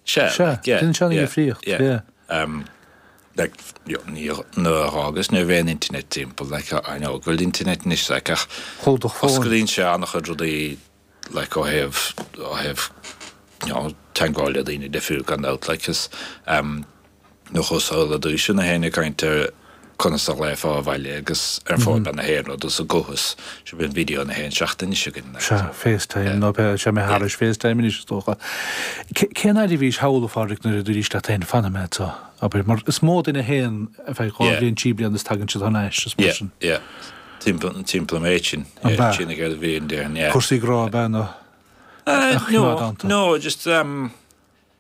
Sea, sin an difríocht. Nuair ná raibh an Internet timpeall, I know, go bhfuil Internet anois, ach osclaíonn sé an-chuid rudaí ó thaobh teagmháil le daoine difriúil gan dabht. nó chomh sona d'uaisle na hÉirne ag caint ar conas a ghlaofá abhaile agus ar mhórbhean na hÉireann, rud a sa gcomhthéacs seo bíonn video na haon seachtaine anois againn. Sea, FaceTime nó b'ea, sea, mé thairis FaceTime anois is dócha. Cén fhaid a bhís, shamhlaigh Pádraig nuair a dúraís leat féin, fanfaidh mé anso, abair, mar is mó duine a théann ar feadh dhá bhliain, trí bliana is tagann siad thar n-ais, is mar sin. Yeah, yeah, timpeall an mhéid sin, yeah, sin a gcéad bhliain déarfainn, yeah. Cúrsaí grá ab ea nó? Ach, no, no, just, um.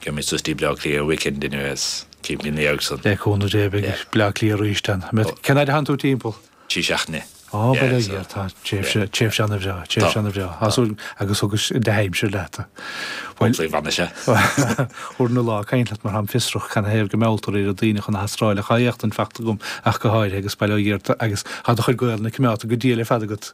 Cimí Cistí Bleá Cliath Mhic an Duine S Cimí Néag San. Beidh cúnamh Dé ag Bleá Cliath arís ann. Cén fhaid a bheidh tú timpeall? Trí seachtaine. Ó, beidh a fhios. Tá tréimhse, tréimhse ana bhreá, tréimhse ana bhreá. Tá. Sure, agus thugais an dea aimsir leat. Bhuel. Hopefully bheannaigh sé. Fuaireas an lá caint leat mar tháim fiosrach canathaobh go mealltar oiread daoine chun na hAstráile. Tá éachtaint fachta agam ach go háirithe agus baile agus cad a chuir geall le coimeádta go diail ar fad agat?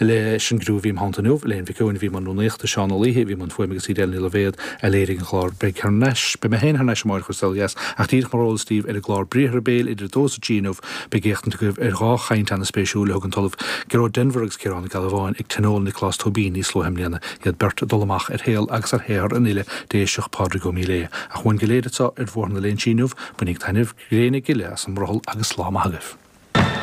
Leis an gcriú a bhí im theannta inniu, Léan Mhic Eoin a bhí i mbun rúnaíochta, Seán Ó Laoithe a bhí i mbun fuaime agus Edel Ní Loibhéad a léirigh an clár. Beidh thar nais, beidh mé féin thar nais amáireach ar an Saol Ó Dheas ach díreach mar eolas díbh ar an gclár Briathra Béil idir a dó is a trí inniu beidh éachtaint agaibh ar dhá chaint ana spéisiúil a thug an tOllamh Gearóid Denvir agus Ciarán Ó Gealbháin ag Tionól Nioclás Tóibín níos luaithe i mbliana, iad beirt ag dul amach ar shaol agus ar shaothar an fhile Dhéiseach Pádraig Ó Míléadh. Ach uainn go léir anseo ar Bhóthar na Léinsí inniu, bainigí taitneamh, gréine gile as an mbrothall agus lá maith agaibh.